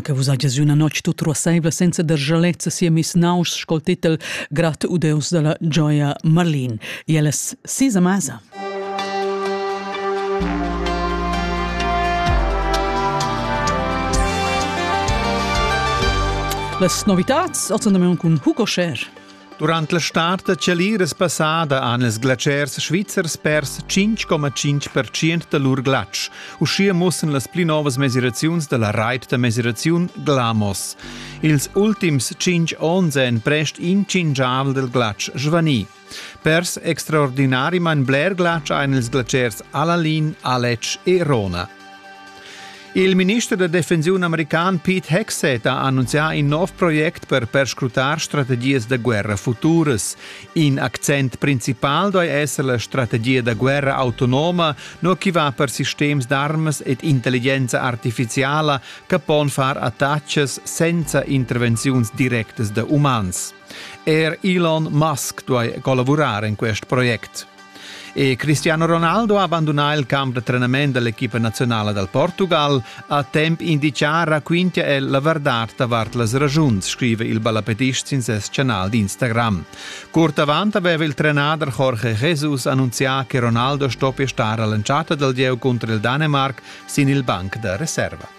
che vus hagias üna notg tut ruassaivla senza dargialezza siemis naus scol titel Grat u Deus della gioia Marlin. E alles sis a masa. Las novitats ozzandamion cun Hugo Scher. Durant la start da chaliras passada han ils glatschers svizzers pers 5,5% da lur glatsch. Uschia mussan las pli novas mesiraziuns da la rait da mesiraziun Glamos. Ils ultims 5 onns èn prest incingiavel del glatsch svanì. Pers extraordinarimain bler glatsch ein ils glatschers Alalin, Aletsch e Rona. Il minister da defensiun american Pete Hegseth ha annunzià in nov project per perscrutar strategias da guerra futuras. In accent principal doi esser la strategia da guerra autonoma, no chi va per sistems d'armas ed intelligenza artificiala che pon far attacches senza intervenziuns directas da umans. Er Elon Musk duai collavurar en quest project. E Cristiano Ronaldo ha abandonà il camp da trenament dell'equipa nazionala dal Portugal a temp indicà raquintia el la verdad davart las ragiuns, scrive il ballapetist sin ses canal d'Instagram. Curt avant aveva il trenader Jorge Jesus annunzià che Ronaldo stoppia star all'entschatta dal gieu cunter il Dänemark sin il banc da reserva.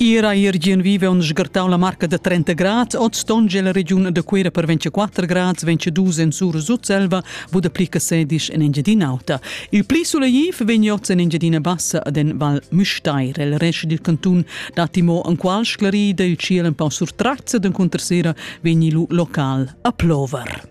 Ira Irgin vive on sgartau la marca da 30 grad, ot stonge la regiun da Cuera per 24 grad, 22 en sur Sutselva, Buda pli che sedisch en Engiadin'Auta. Il pli suleiv vegn oz en Engiadina Bassa ad en Val Müstair. Il rest dil cantun dati mo en qual sclarida il ciel un pau surtrazza d'en cuntersera vegni lu local a plover.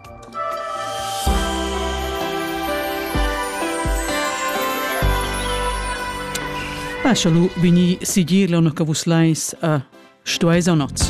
Paschalu vegni sigir leuna che vus leis a stueis o nots.